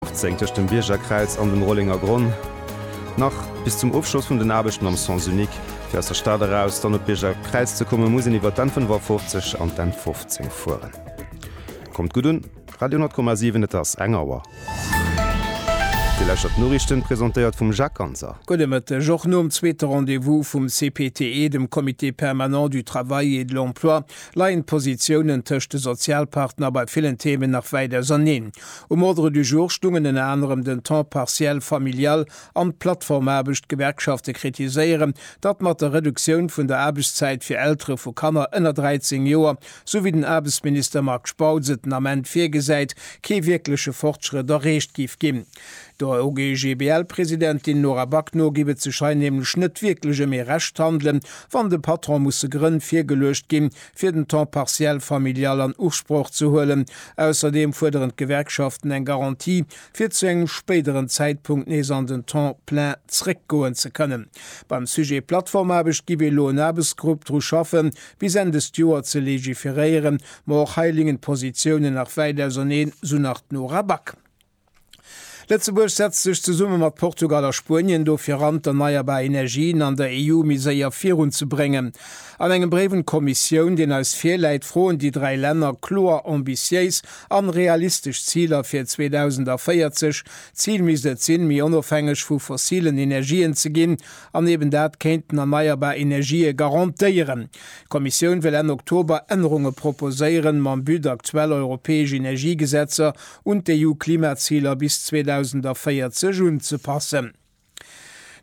15 tëscht dem Biergerkräiz an dem Rollengergronn, nach bis zum Ofschloss vun den Aarbechten am Sens unique. Fir aus der Stad eraus dann op d'Biergerkräiz ze kommen, muss een iwwert d'Enn 55 an d'Enn 15 fueren. Kommt gutt un, Radio 10,7, et ass eng Auer. Dir lauschtert d'Noriichten, presentéiert vum Jacques Ganser. Gudde Mëtteg. Och nom zweete Rendez-vous vum CPTE, dem Comité permanent du travail et de l'emploi, leien d'Positiounen tëscht de Sozialpartner bei villen Themen nach wäit auserneen. Um Ordre du jour stungen ënner anerem den Temps partiel familial an d'Plattformaarbecht. D'Gewerkschafte kritiséieren, datt mat der Reduktioun vun der Aarbechtszäit fir Eltere vu Kanner ënner 13 Joer, sou wéi den Aarbechtsminister Marc Spautz et den Ament virgesäit, kee wierkleche Fortschrëtt erreecht géif ginn. Der OGBL-Presidentin Nora Back no géif et sech hei nämlech net wierklech ëm ee Rechthandelen, wann de Patron musse Grënn virgeluecht ginn, fir den Temps partiel familial an Usproch ze huelen. Ausserdeem fuerderen d'Gewerkschaften eng Garantie, fir zu engem spéideren Zäitpunkt nees an den Temps plein zréckgoen ze kënnen. Beim Sujet Plattformaarbecht gi mir elo en Aarbechtsgrupp dru schaffen, bis Enn dëst Joer ze legiferéieren. Ma och hei lingen d'Positiounen nach wäit auserneen, sou nach d'Nora Back. Lëtzebuerg setzt sech zesumme mat Portugal a Spuenien dofir an, d'erneierbar Energien an der EU méi séier virun ze bréngen. An engem Bréif un d'Kommissioun, deen eis virläit, froen déi dräi Länner kloer ambitiéis an realistesch Ziler fir 2040. D'Zil misst et sinn, méi onofhängeg vu fossilen Energien ze ginn an eben dat kéinten erneierbar Energië garantéieren. D'Kommissioun wëll Enn Oktober Ännerunge proposéieren, mam But aktuell europäesch Energiegesetzer un d'EU-Klimaziler bis 2040 unzepassen.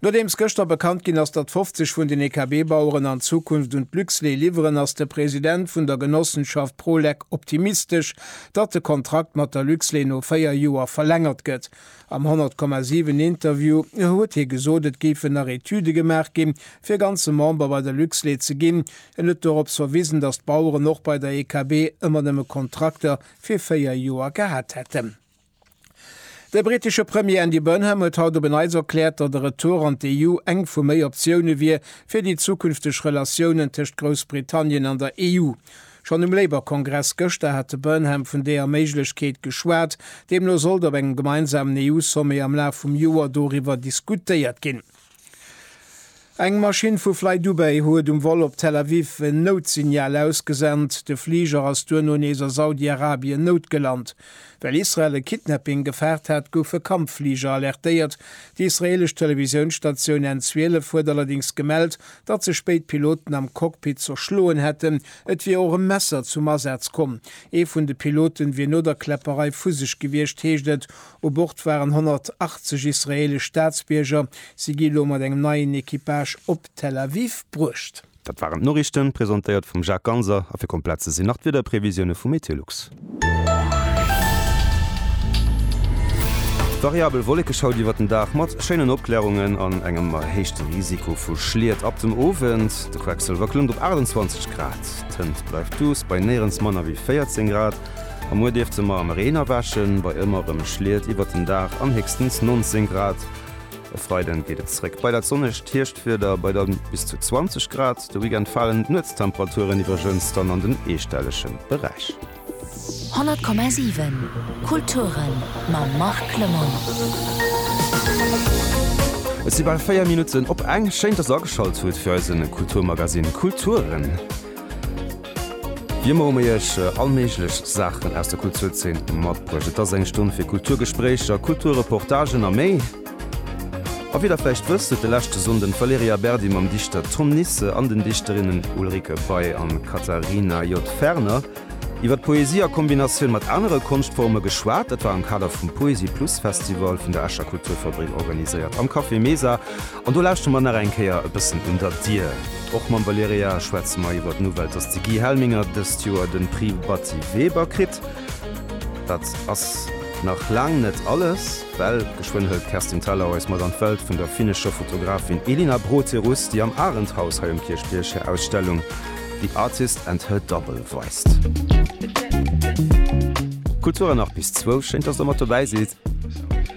Nodeems gëschter bekannt ginn ass, datt 50 vun den EKB-Baueren an Zukunft un d'Luxlait liwweren, ass de President vun der Genossenschaft Prolec optimistesch, datt de Kontrakt mat der Luxlait no 4 Joer verlängert gëtt. Am 100,7 Interview huet hie gesot, et géifen nach Etüde gemaach ginn, fir ganze Member bei der Luxlait ze ginn. En huet dorops verwisen, datt d'Baueren och bei der EKB ëmmer nëmme Kontrakter fir véier Joer gehat hätten. De brittesche Premier Andy Burnham huet haut op en Neits erkläert, datt e Retour an d'EU eng vu méi Optioune wier fir déi zukünfteg Relatiounen tëscht Groussbritannien an der EU. Schonn um Labour-Kongress gëschter hat de Burnham vun deeër Méiglechkeet geschwat. Deemno sollt op engem gemeinsamen EU-Sommet am Laf vum Joer doriwwer diskutéiert ginn. Eng Maschinn vu FlyDubai huet um Vol op Tel Aviv en Noutsignal ausgesent. De Fliger ass duerno nees a Saudi-Arabien noutgelant. Well Israel e Kidnapping gefaart hat, goufe Kampffliger alertéiert. Déi israeelesch Televisiounsstatioun N12 huet allerdéngs gemellt, datt sech béid Piloten am Cockpit zerschloen hätten. Et wier och e Messer zum Asaz komm. Ee vun de Pilote wier no der Kläpperei vu sech gewiescht, heescht et. U Bord waren 180 israeelesch Staatsbierger. Si gi lo mat engem neien Equipage op Tel Aviv bruecht. Dat waren d'Noriichten, presentéiert vum Jacques Ganser. A fir komplett ze sinn nach d'Wiederprevisioune vu Meteolux. Variabel Wollekeschaut iwwert den Dag mat schéinen Opklärungen an engem erhéichte Risiko vu Schliet ab dem Owend. De Quecksëlwer klëmmt op 28 Grad, d'Hënt bleift duuss bei néierens manner wéi 14 Grad. A muer dierft se mar am Reen erwächen, bei ëmmer rem Schliet iwwert den Daach an héchstens 19 Grad. E Freiden geet et zréck bei dat sonnegt Hierschtwieder bei dann bis zu 20 Grad. De Weekend falen d'Nuetstemperaturen iwwregens dann an den eestellege Beräich. 100,7 Kulturen mam Marc Lemon. Et si bal 4 Minutten op eng. Schéin dass der ageschalt hutt fir eise Kulturmagazine Kulturen. Wie emmer hu mir iech all méiglech Saachen aus der Kulturzeen matbruecht. Et ass eng Stonn fir Kulturgespréicher, Kulturreportagen a méi. A wéi der vläicht wësst, huet de leschte Sonnden d'Valerija Berdi mam Dichter Tom Nisse an den Dichterinnen Ulrike Bey an Katharina J. Ferner iwwer d'Poesie a Kombinatioun mat anere Konschtforme geschwat. Dat war am Kader vum Poesie Plus Festival vun der Escher Kulturfabrik organiséiert am Café Mesa An do lauschteren mer nach eng Kéier e bëssen un der Dier. Och mam Valerija schwätze mer iwwer d'Nouvelle, dass de Guy Helminger dëst Joer de Prix Batty Weber kritt. Dat ass nach laang net alles, well geschwënn hëlt d'Kerstin Thalau eis mat an d'Welt vun der finnescher Fotografin Elina Broterus, déi am Arendthaus hei um Kierchbierg hir Ausstellung The Artist and Her Double weist. Kultur an nach bis zwou. Schéin, dass der mat dobäi sidd.